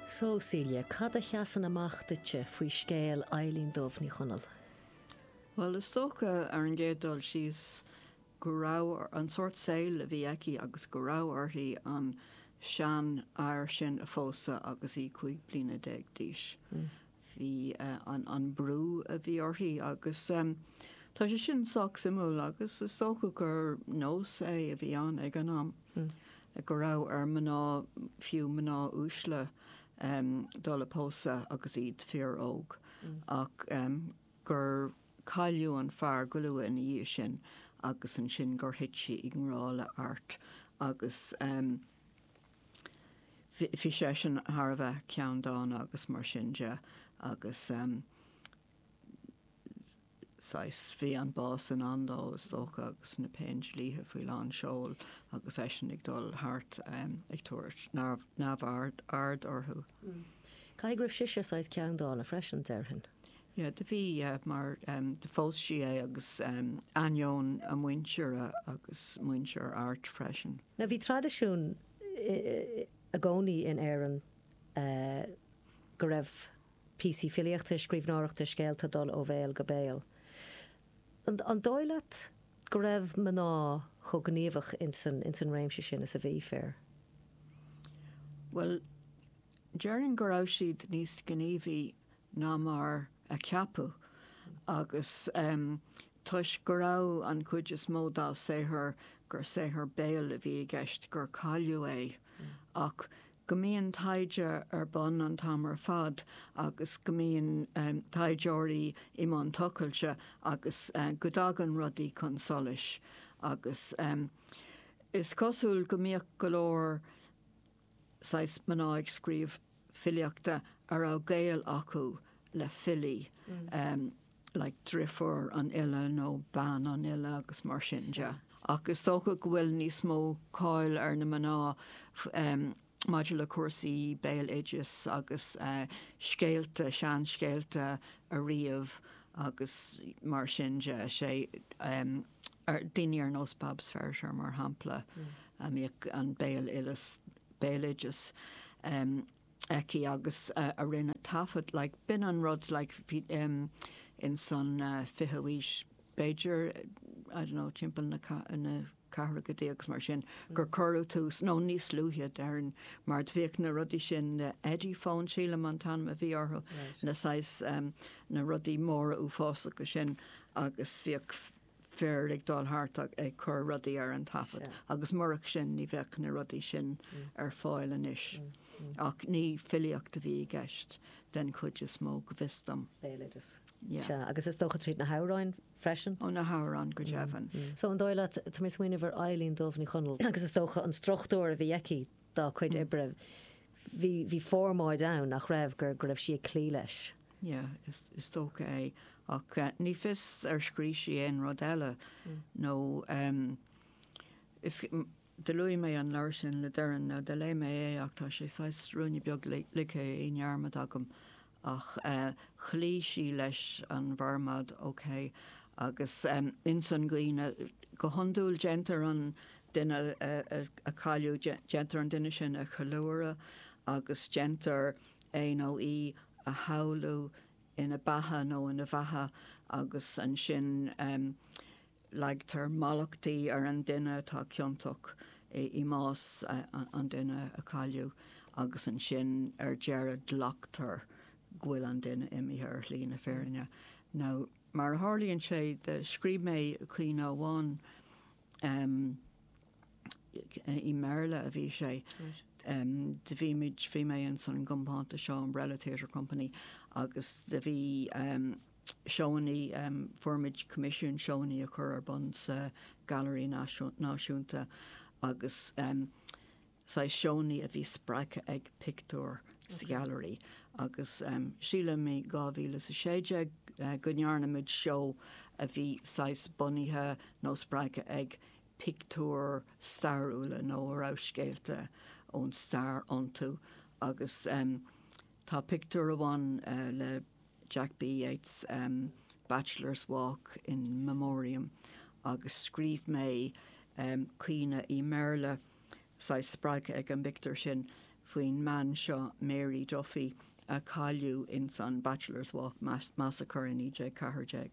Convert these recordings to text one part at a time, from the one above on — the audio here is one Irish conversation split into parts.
So, Celia, cad a sheasann amach duitse faoi scéal Eibhlín Dubh Ní Chonaill? Bhuel, is dócha, ar an gcéad dul síos, go raibh, an sórt saoil a bhí aici agus go raibh uirthi an seanfhear sin a phósadh agus í cúig bliana déag d'aois. bhí an brú a bhí uirthi agus tá sé sin sách suimiúil agus is dócha gur nós é a bhí ann ag an am go raibh ar mhná, fiú mná uaisle, dul ag pósadh agus iad fíor óg ach gur cailleadh an fear go luath ina dhiaidh sin agus ansin gur thit sí i ngrá le hArt agus. Bhí seisean thar a bheith ceanndána agus mar sin de agus saghas, bhí an bás i ndán dó is dócha agus na Péindlíthe faoi lán seoil agus eisean ag dul thart ag tabhairt neamhaird orthu. Caithfidh go raibh sise saghas ceanndána freisin déarfainn. Yeah, do bhí, yeah, mar do phós sí é agus in ainneoin a muintire agus muintir Airt freisin. Now bhí traidisiún i gcónaí in Éirinn go raibh píosaí filíochta, scríbhneoireachta, scéalta ag dul ó bhéal go béal. An dóigh leat go raibh mná chomh gníomhach ins an réimse sin is a bhí fir? Bhuel, déarfainn go raibh siad níos gníomhaí ná mar a ceapadh agus toisc go raibh an chuid is mó dá saothar gur saothar béil a bhí i gceist, gur cailleadh é. Ach go mbíonn taighde ar bun an t-am ar fad agus go mbíonn taighdeoirí i mbun tochailte agus go dtagann rudaí chun solais agus is cosúil go mbíodh go leor saghas mná ag scríobh filíochta a raibh gaol acu le filí, like drifiúr an fhile nó bean an fhile agus mar sin de. Ach is dócha go bhfuil níos mó cáil ar na mná maidir le cúrsaí béaloidis agus scéalta, seanscéalta a ríomh agus mar sin de, sé, daoine ar nós Bab Feiritéar mar shampla. a mbíodh an béaloideas, béaloideas, aici agus a rinne taifead like b'in an rud like ins an 20ú aois b'fhéidir I don't know timpeall na gceathrachaidí agus mar sin gur cuireadh tús nó níos luaithe déarfainn mar bhíodh na rudaí sin na Ediphone sílim an t-ainm a bhí orthu na saghas na rudaí móra uafásacha sin agus bhíodh fear ag dul thart ag cur rudaí ar an taifead agus murach sin ní bheadh na rudaí sin ar fáil anois. Ach ní filíocht a bhí i gceist den chuid is mó, go bhfios dom. Béaloideas. Sea, agus is dócha tríd na hamhráin freisin? Ó na hamhráin go deimhin. So an dóigh leat, tá mé ag smaoineamh ar Eibhlín Dubh Ní Chonaill agus is dócha an struchtúr a bhí aici, dá cuid oibre, bhí formáid ann nach raibh, go raibh sí ag cloí leis. Yeah, is dócha é. Ach ní fios ar scrígh sí aon rud eile nó do luaigh mé an leabhar sin le Doireann, nó do léigh mé é ach tá sé saghas ruainne beag ligthe i ndearmad agam ach chloígh sí leis an bhformáid OK agus ins an gcaoineadh, go hiondúil, déantar an duine a cailleadh, déantar an duine sin a cheiliúradh agus déantar é nó í a shamhlú ina beatha nó ina bheatha agus ansin Leagtar mallachtaí ar an duine atá ciontach i mbás an duine a cailleadh agus ansin ar deireadh glactar go bhfuil an duine imithe ar shlí na fírinne. Nó mar a tharlaíonn sé, do scríobh mé caoineadh amháin, i mBéarla a bhí sé, do bhí muid, bhí mé ins an gcompántas seo, Umbrella Theatre Company, agus do bhí, Seónna, fuair muid coimisiún seónna a chur ar bun sa Ghailearaí Náisiúnta agus saghas seónna a bhí spreagtha ag pictiúir sa Ghailearaí agus sílim i 2016 go ndearna muid seó a bhí saghas bunaithe nó spreagtha ag pictiúir stairiúla nó a raibh scéalta ón stair iontu agus tá pictiúr amháin le Jack B. Yeats, Bachelor's Walk, In Memoriam, agus scríobh mé caoineadh i mBéarla, saghas spreagtha ag an bpictiúr sin, faoin mbean seo, Mary Duffy, a cailleadh ins an Bachelor's Walk massacre i 1914.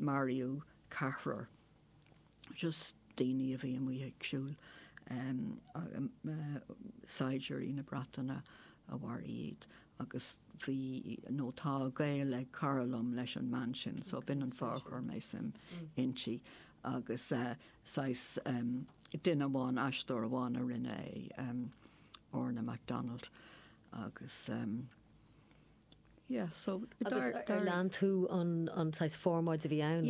Maraíodh ceathrar. just daoine a bhí amuigh ag siúl, em, saighdiúirí na Breataine a mharaigh iad agus bhí, nó tá gaol ag cara liom leis an mbean sin so b'in an fáth ar chuir mé suim inti agus, eh, saghas, em, duine amháin, aisteoir amháin a rinne é, em, Orna McDonald agus, em, Agus ar lean tú an saghas formáid a bhí ann?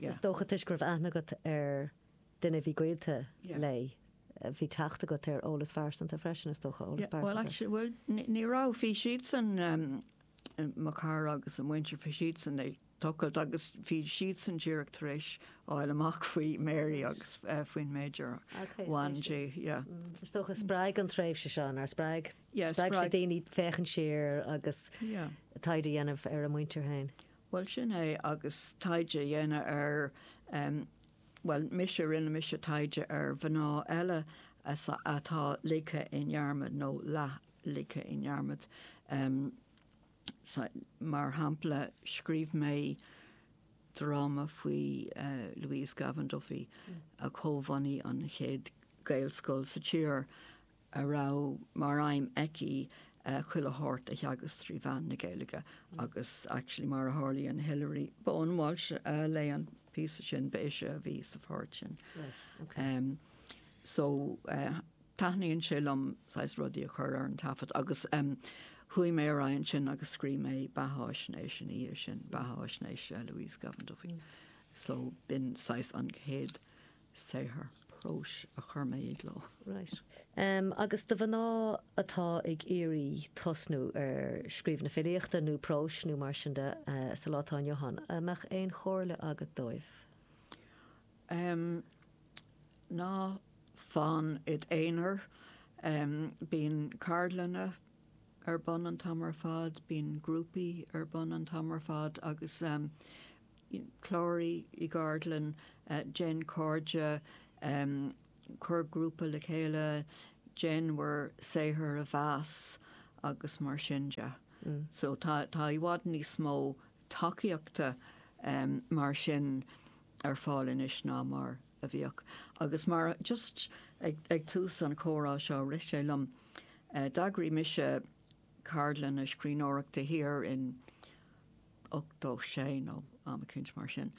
Is dócha toisc go raibh aithne agat ar duine a bhí gaolta léi, bhí teacht agat ar eolas pearsanta freisin, is dócha, eolas pearsanta? Bhuel, ní raibh, bhí siadsan, mo chara agus a muintir, bhí siadsan ag tochailt agus bhí siadsan díreach tar éis fháil amach faoi Mary agus faoin méid ar bhain di. Is dócha spreag an tréimhse seo nár spreag? Spreag sé daoine féachaint siar agus taighde a dhéanamh ar a muintir féin? Bhuel sin é agus taighde a dhéanamh ar, bhuel mise, rinne mise taighde ar mhná eile atá ligthe i ndearmad nó leath-ligthe i ndearmad. Mar shampla, scríobh mé dráma faoi Louise Gavan Duffy, a chomhbhunaigh an chéad Ghaelscoil sa tír, a raibh mar aidhm aici chuile shórt a theagasc trí mheán na Gaeilge agus, actually, mar a tharlaíonn, Hilary Bowen-Walsh a léigh an píosa sin, ba ise a bhí sa pháirt sin. So. taithníonn sé liom saghas rudaí a chur ar an taifead agus chuaigh mé ar aghaidh ansin agus scríobh mé beathaisnéis ina dhiaidh sin, beathaisnéis Louise Gavan Duffy. So b'in saghas an chéad saothar próis a chuir mé i gcló. Right. Agus do mhná atá ag iarraidh tosnú ar scríobh na filíochta nó próis nó mar sin de sa lá atá inniu ann, an mbeadh aon chomhairle agat dóibh? Em. ná fan id aonar. Em. bíonn ceardlanna ar bun an t-am ar fad, bíonn grúpaí ar bun an t-am ar fad agus, em. cláraigh i gceardlann, déan cairde, em. cuir grúpa le chéile, déan bhur saothar a mheas agus mar sin de. So tá i bhfad níos mó tacaíochta mar sin ar fáil anois ná mar a bhíodh. Agus mar a, just ag tús an chomhrá seo rith sé liom, d'eagraigh mise ceardlanna scríbhneoireachta thiar in ochtó sé nó am eicínt mar sin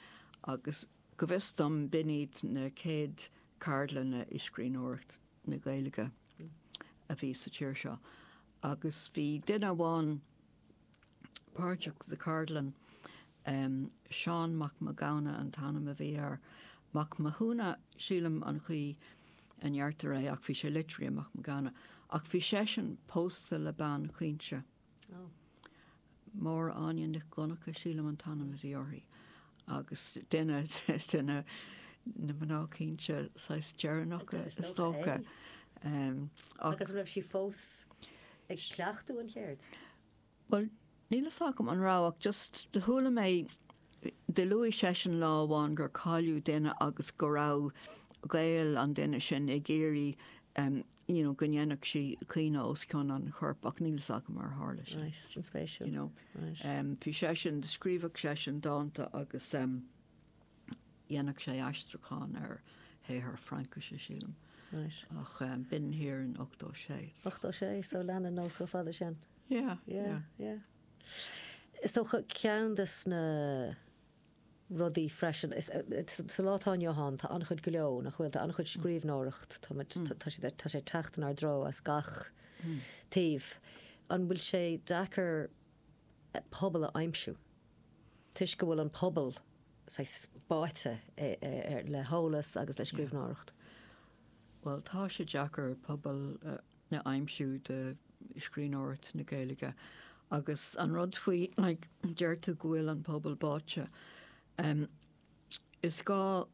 agus go bhfios dom b'in iad na chéad ceardlanna i scríbhneoireacht na Gaeilge a bhí sa tír seo agus bhí duine amháin páirteach sa cheardlann. Seán Mac Mathghamhna an t-ainm a bhí air. Mac Mathúna, sílim an chaoi a ndeirtear é, ach bhí sé litrithe Mac Mathghamhna, ach bhí seisean pósta le bean chaointe. Máire Áine Nic Dhonnacha, sílim an t-ainm a bhí uirthi. agus duine de na mná caointe saghas deireanacha is dócha. Agus raibh sí fós ag cleachtadh an cheird? Bhuel, níl fhios agam an raibh ach just do chuala mé, do luaigh seisean lá amháin gur cailleadh duine agus go raibh gaol an duine sin ag iarraidh you know, go ndéanfadh sí caoineadh os cionn an choirp ach níl fhios agam ar tharla sin. Right, sin spéisiúil. You know, ehm, bhí seisean, scríobhadh seisean dánta agus, ehm, dhéanfadh sé aistriúchán ar shaothar Fraincise, sílim. Right. Ach, ehm, b'in thiar in 86, so. 86, so leanann nós chomh fada sin. Yeah, yeah. Yeah, yeah. Is dócha ceann de sna rudaí freisin. Is sa lá atá inniu ann, tá an-chuid gleo ann, nach bhfuil? Tá an-chuid scríbhneoireacht, tá muid, tá siad, tá sé ag teacht inár dtreo as gach taobh. An bhfuil sé deacair pobal a aimsiú toisc go bhfuil an pobal, saghas, báite le heolas agus le scríbhneoireacht? Bhuel, tá sé deacair pobal a. a aimsiú do scríbhneoireacht na Gaeilge. Agus an rud faoi, like, deir tú go bhfuil an pobal báite, em, is gá,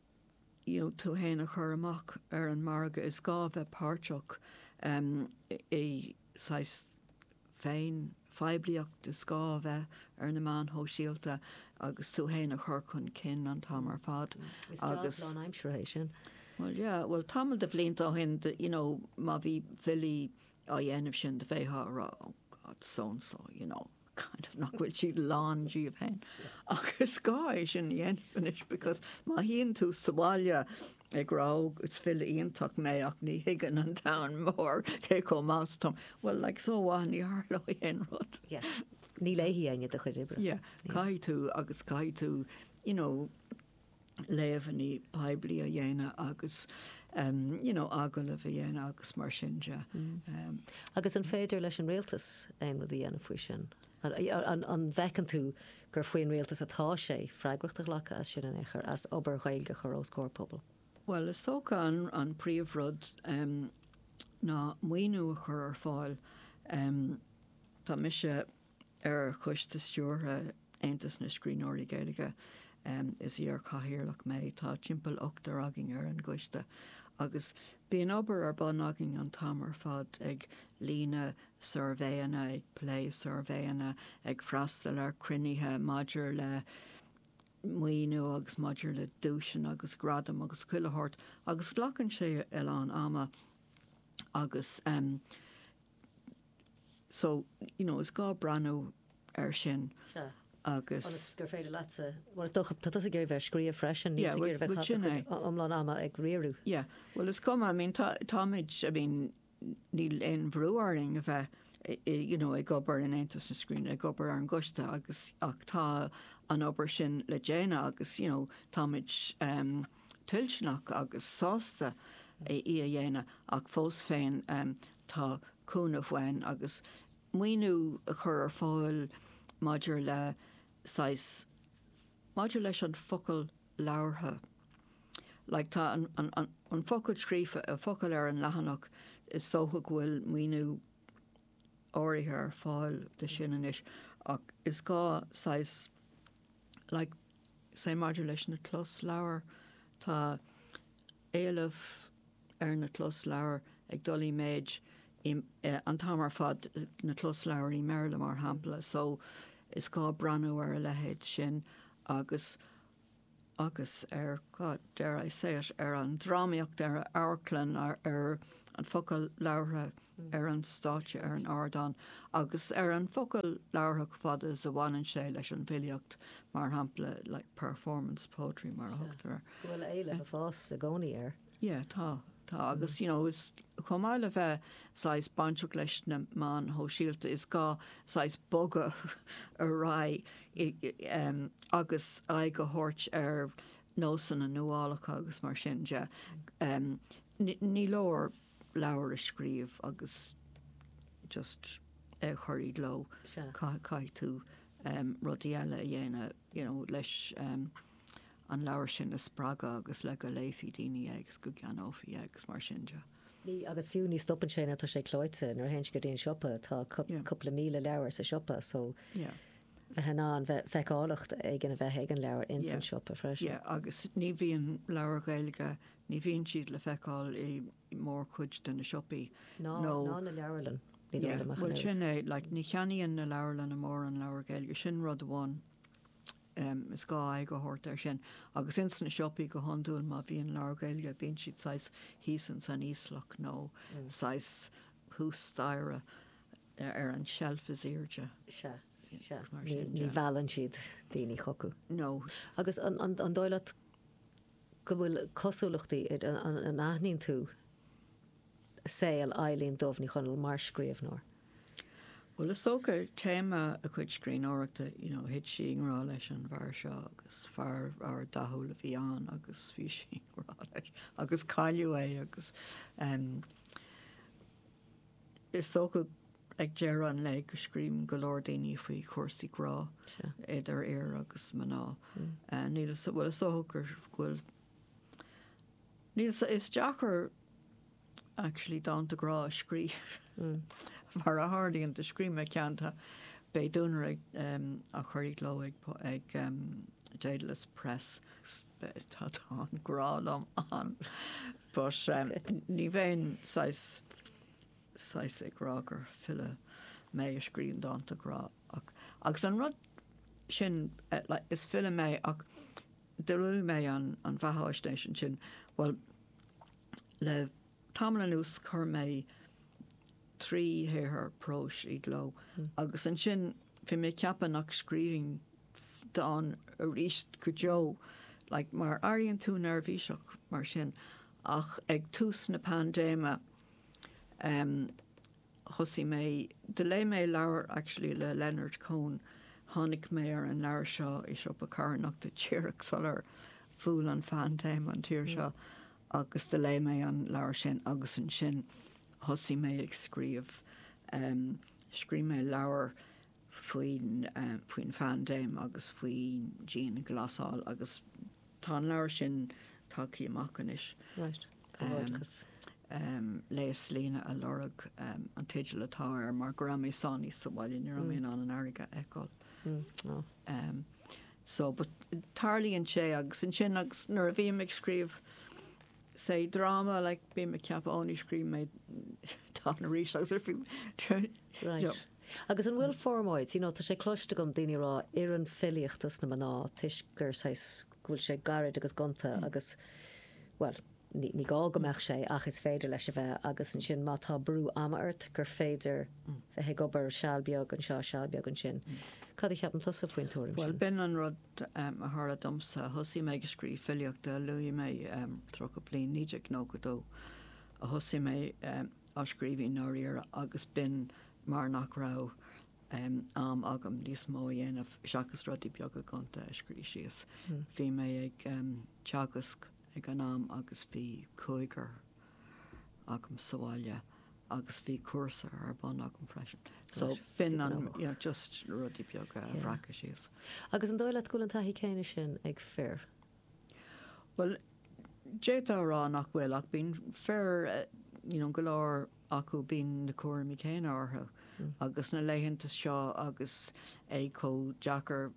you know, tú fhéin a chur amach ar an margadh, is gá bheith páirteach, em, i saghas féinphoiblíocht is gá a bheith ar na meáin shóisialta agus tú féin a chur chun cinn an t-am ar fad agus. Is job lánaimseartha é sin. Bhuel yeah, bhuel tamall de bhlianta ó shin you know má bhí filí á dhéanamh sin do bheifí ag rá oh God so and so you know kind of nach bhfuil siad lán díobh féin ach is gá é sin a dhéanamh anois because má shuíonn tú sa bhaile ag rá is file iontach mé ach ní thuigeann an domhan mór cé chomh maith is atáim. Bhuel, like so what, ní tharlóidh aon rud. Yeah. Ní léifidh éinne do chuid oibre. Yeah. Caithfidh tú agus caithfidh tú, you know, léamhainní poiblí a dhéanamh agus um you know, agallaimh a dhéanamh agus mar sin de. Um. Agus an féidir leis an Rialtas aon rud a dhéanamh faoi sin? An bhfeiceann tú gur faoin Rialtas atá sé freagracht a ghlacadh as sin in aon chor, as obair Ghaeilge a chur os comhair pobal? Bhuel, is dócha an príomhrud ná maoiniú a chur ar fáil. Tá mise ar choiste stiúrtha Aontas na Scríbhneoirí Gaeilge, is iar-chathaoirleach mé, tá timpeall ochtar againn ar an gcoiste, agus bíonn obair ar bun againn an t-am ar fad ag líonadh suirbhéanna, ag plé suirbhéanna, ag freastal ar chruinnithe maidir le maoiniú agus maidir le duaiseanna agus gradaim agus chuile shórt agus glacann sé a lán ama agus em so you know is gá breathnú air sin Sea. agus Ionas gur féidir leatsa, bhuel is dócha, tá tusa ag iarraidh bheith ag scríobh freisin, níl Yeah, tusa ag well- iarraidh bheith ag well, caitheamh sin é. cuid iomlán ama ag riar. Yeah, well is cuma, I mean tá, táimid, I mean, níl aon bhrú orainn a bheith you know ag obair in Aontas na Scríbhneoirí, ag obair ar an gcoiste agus ach tá an obair sin le déanamh agus you know táimid ehm toilteanach agus sásta í a dhéanamh ach fós féin ehm tá cúnamh uainn agus maoiniú a chur ar fáil maidir le saghas maidir leis an focal labhartha. Like Tá an focal scríofa an focal ar an leathanach, is dócha go bhfuil maoiniú áirithe ar fáil dó sin anois ach is gá saghas like maidir leis na closleabhair, tá éileamh ar na closleabhair ag dul i méid an t-am ar fad, na closleabhair i mBéarla mar shampla, so is gá breathnú ar a leithéid sin agus. agus ar, God, dare I say it, ar an drámaíocht, ar an amharclann, ar an focal labhartha ar an stáitse, ar an ardán, agus ar an focal labhartha chomh fada is a bhaineann sé leis an bhfilíocht, mar shampla, like, performance poetry mar a thugtar air. Go bhfuil éileamh ag fás i gcónaí air. Yeah, tá. Tá agus, you know, chomh maith le bheith saghas bainteach leis na meáin shóisialta, is gá saghas bogadh ar aghaidh, em, agus aghaidh a thabhairt ar nósanna nuálacha agus mar sin de. Em, ní leor leabhar a scríobh agus just é a chur i gcló. Sea. Caithfidh tú, em, rudaí eile a dhéanamh, you know, leis, em, an leabhar sin a spreagadh agus le go léifeadh daoine é agus go gceannófaí é agus mar sin de. Ní, agus fiú, ní stopann sé nuair atá sé clóite, nuair a théann sé go dtí an siopa, tá Yeah. cúpla míle leabhar sa siopa so Yeah. bheith in ann bheith, feiceálacht éigin a bheith ag an leabhar ins Yeah. an siopa freisin. Yeah, agus ní bhíonn leabhair Ghaeilge, ní bhíonn siad le feiceáil i mórchuid de na siopaí Ná, nó ná na leabharlanna, ní dóigh Yeah, liom ach an bhuel oiread. sin é, like ní cheannaíonn na leabharlanna mórán leabhar Gaeilge, sin rud amháin. is gá aghaidh a thabhairt air sin. Agus ins na siopaí go hiondúil, má bhíonn leabhair Gaeilge, bíonn siad saghas thíos ins an íoslach nó saghas thuas staighre ar an tseilf is aoirde. Sea, sea. Ní mheallann siad daoine chucu. No. Agus an dóigh leat go bhfuil cosúlachtaí, an aithníonn tú saol Eibhlín Dubh Ní Chonaill mar scríbhneoir? Bhuel, is dócha téama a cuid scríbhneoireachta, you know, thit sí i ngrá leis an bhfear seo agus fear, fear dathúil a bhí ann agus bhí sí i ngrá leis agus cailleadh é agus, em, is dócha Ag deireadh an lae go scríobhann go leor daoine faoi chúrsaí grá idir fhir agus mná. Níl, bhuel is dócha go bhfuil, níl, is deacair actually dánta grá a scríobh mar a tharlaíonn, do scríobh mé ceann, tá, beidh duanaire á chur i gcló ag Dedalus Press, tá dán grá liom ann but ní bheinn ag saghas, saghas ag rá gur file mé a scríobhann dánta grá ach agus an rud sin like is file mé ach do scríobh mé an an bheathaisnéis ansin bhuel le tamall anuas chuir mé trí shaothar próis i gcló agus ansin bhí mé ag ceapadh nach scríobhfainn dán arís go deo like mar airíonn tú neirbhíseach mar sin ach ag tús na paindéime em thosaigh mé do léigh mé leabhar actually le Leonard Cohen tháinig mé ar an leabhar seo i siopa carthanachta díreach sular bhuail an phaindéim an tír seo agus do léigh mé an leabhar sin agus ansin thosaigh mé ag scríobh em scríobh mé leabhar faoin faoin phaindéim agus faoi dianghlasáil agus tá an leabhar sin tagtha amach anois. Right. Comhghairdeachas. Em, Léas líne á lorg em, an teideal atá air mar go raibh mé sáinnithe sa bhaile, ní raibh mé in ann an fharraige a fheiceáil. Á. Em, so, but tarlaíonn sé agus ansin agus nuair a bhím ag scríobh say dráma, like bím ag ceapadh ó ní scríobhfaidh mé dán arís agus ar fiú Right. Agus an bhfuil formáid, you know tá sé cloiste agam daoine a' rá oireann filíocht dos na mná toisc gur saghas, go bhfuil sé gairid agus gonta agus bhuel ní, ní gá go mbeadh sé ach is féidir leis a bheith agus ansin má tá brú ama ort gur féidir bheith ag obair seal beag anseo seal beag ansin. Cad a cheapann tusa faoin tuairim sin? Bhuel b'in an rud a tharla domsa, thosaigh mé ag scríobh filíochta, luaigh mé tríocha bliain, 1992 a thosaigh mé, ag scríobh i ndáiríre agus b'in mar nach raibh am agam níos mó a dhéanamh seachas rudaí beaga gonta a scríobh síos. Bhí mé ag teagasc ag an am agus bhí cúigear agam sa bhaile agus bhí cúrsa ar bun agam freisin. So b'in an just rudaí beaga a bhreacadh síos. Agus an dóigh leat go bhfuil an taithí céanna sin ag fir? Bhuel, d'fhéadfá a rá nach bhfuil, ach bíonn fir, you know, go leor acu, bíonn na cúraimí céanna orthu agus sna laethanta seo agus é chomh deacair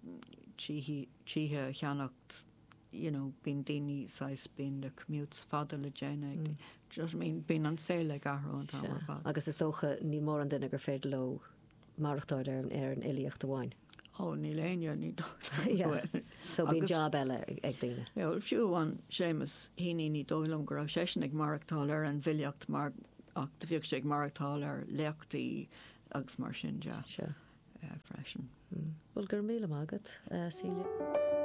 tithe a cheannacht, you know, bíonn daoine saghas, bíonn na commutes fada le déanamh, do you know what I mean, bíonn an saol ag athrú an t-am ar fad. Agus is dócha, níl mórán duine gur féidir leo maireachtáil ar an fhilíocht amháin. Ó, níl éinne, ní dóigh liom. So bíonn jab eile ag daoine. Bhuel, fiú amháin Seamus Heaney ní dóigh liom go raibh seisean ag maireachtáil ar an bhfilíocht mar ach bhíodh sé ag maireachtáil ar léachtaí agus mar sin de freisin. Bhuel, go raibh míle maith agat, Celia.